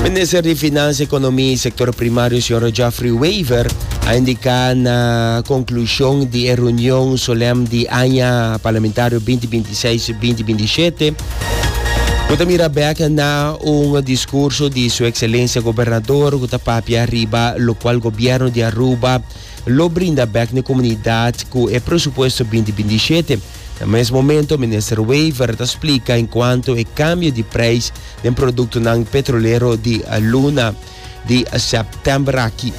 Minister di Finansa, Economia y Sector Primario, señor Geoffrey Wever, a indica na conclusion di e reunion solem di aña parlamentario 2026-2027 Cu ta mira back na un discurso di su excelencia gobernador cu ta papia riba lo cual gobierno di Aruba lo brinda back na comunidad cu e presupuesto 2027. Na mes momento Minister Wever ta splica encuanto e cambio di prijs den productonan petrolero di luna di september aki.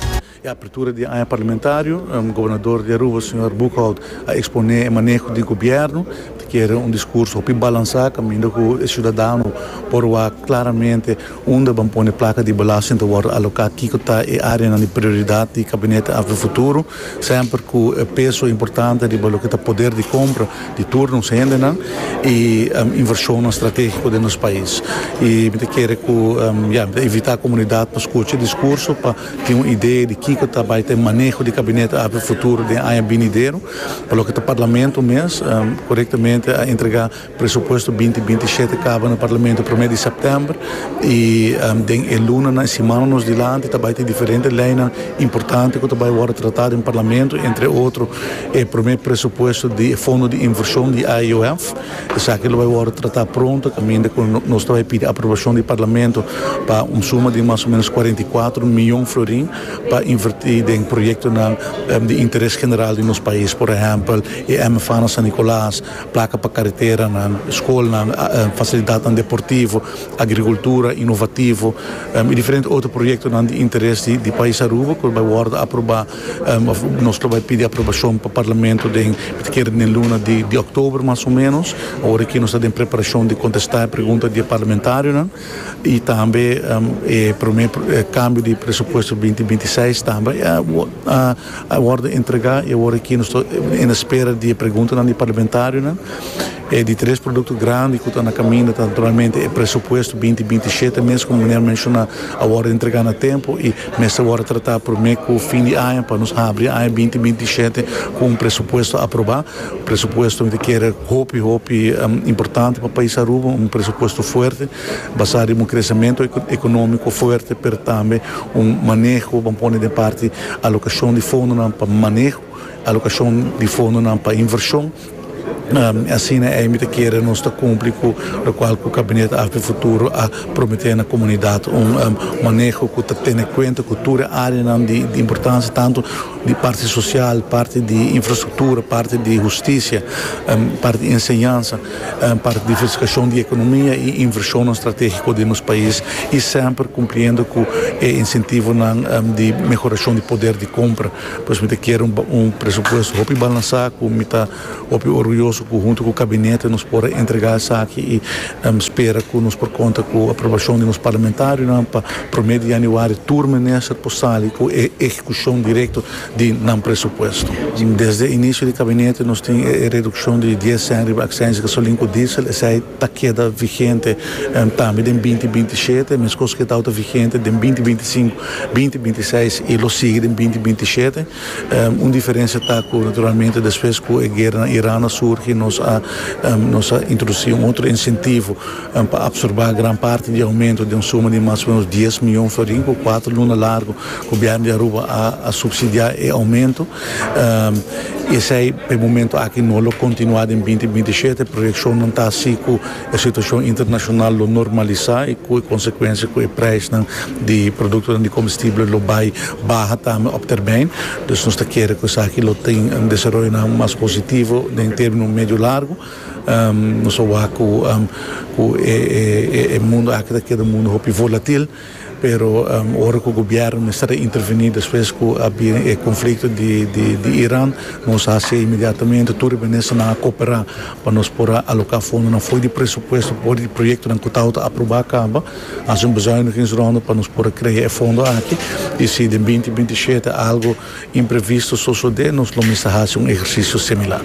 E apertura di e aña parlamentario, Gobernador di Aruba, Señor Boekhoudt, a expone e maneho di Gobierno. Ta kere un discurso hopi balansa caminda cu e ciudadano por wak claramente. Unda ban pone plaka di belasting ta wòrdu aloká, kiko ta e áreanan di prioridat di Gabinete Afri Futuro, semper ku e peso importante riba loke ta poder di kompra di tur nos hendenan i invershonnan stratégiko den nos pais. I mi ta kere ku ya, mi ta invitá komunidat pa skucha e diskurso, pa tin un idea di kiko ta bai ta e maneho di Gabinete Afri Futuro den aña binidero, pa loke ta Parlamento mes korektamente a entregá. Presupuesto binti binti i shete kaba na Parlamento promé di sèptèmber i den e lunanan i simananan dilanti ta bai tin diferente leinan importante ku ta bai wòrdu tratá den Parlamento, entre otro e promé presupuesto di e fondo di invershon di AEOF. Esaki lo bai wòrdu tratá pronto kaminda ku nos ta bai pidi aprobashon di Parlamento pa un suma di mas o ménos kuarenta i kuatro mion florin pa invertí den proyektonan di interes general di nos pais, por ehèmpel e MFAnan San Nicolas, Plaka pa kareteranan, skolnan, fasilidatnan deportivo, agrikultura inovativo i diferente otro proyektonan di interes di pais Aruba ku lo bai wòrdu aprobá òf nos lo bai pidi aprobashon pa parlamento den mi ta kere den luna di òktober mas o menos. Awor aki nos ta den preparashon di kontestá e pregunta di e parlamentarionan. Y tambe e prome cambio di presupuesto di binti binti seis tambe a wordo entrega y awor aki nos ta en espera di e preguntanan di parlamentarionan. E di tres producto grandi cu ta na caminda ta naturalmente e presupuesto di binti binti shete mes como meneer a menciona a wordo entrega na tempo y mester wordo trata prome cu fin di aña pa nos habri aña binti binti shete cu un presupuesto aproba. Presupuesto mi ta kere hopi hopi importante pa pais Aruba, un presupuesto fuerte basado den un crecemento economico fuerte pero tambe un maneho bo a pone den parti alocacion di fondonan pa maneho, alocacion di fondonan pa inversion asina ei mi ta kere nos ta cumpli cu locual cu Cabinet AFP Futuro a promete na comunidad un maneho cu ta tene cuenta cu tur e areanan di importancia tanto di parti sosial, parti di infrastruktura, parti di hustisia, parti di enseñansa, parti di diversifikashon di ekonomia i invershonnan stratégiko den nos pais i semper kumpliendo ku e insentivonan di mehorashon di poder di kompra. Pues mi ta kere un presupuesto hopi balansá ku mi ta. Hopi orguyoso cu hunto cu Cabinete nos por a entrega esaki y spera cu nos por conta cu aprobacion di nos Parlamentarionan pa prome di Januari tur Minister por sali cu e ehecucion directo di nan presupuesto. Desde e inicio di Cabinete nos tin e reduccion di dies cent riba accisie gasolin cu diesel, esai ta keda vigente tambe den binti binti shete, mescos cu e tawata vigente den binti binti cinco, binti binti seis y lo sigui den binti binti shete. Un diferensia ta ku naturalmente despues ku e guera na Iran a surgi nos a nos a introdusí un otro insentivo pa apsorbá gran parti di e aumento den un suma di mas o menos dies mion florin ku kuater luna largu ku biaha di Aruba a supsidiá e aumento i esei pa e momentu aki no lo kontinuá den binti binti i shete proyekshonnan ta si ku E situacion internacional lo normalisa y cu e consecuencia cu e prijsnan di productonan di comestible lo bay baha tambe op termijn. Dus nos ta kere cu esaki lo tin desaroyonan mas positivo den termino medio largo. Nos a wak cu e mundo aki ta keda un mundo hopi volatil. Pero ora ku gobièrnu mester a intervení despues ku a bin e konflikto di Iran, nos a hasi inmediatamente. Tur e ministernan a koperá pa nos por a aloká fondonan for di presupuesto for di proyektonan ku tabata aprobá kaba. A hasi un bezuinigingsronde pa nos por a krea e fondo aki. I si den binti binti i shete algu imprevisto sosodé, nos lo mester hasi un ehersisio similar.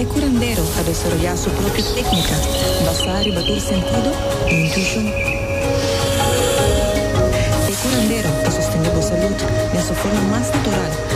E curandero a desaroyá su propio técnica basá riba tur sentido i intuishon. E curandero ta sostendé bo salud den su forma mas natural.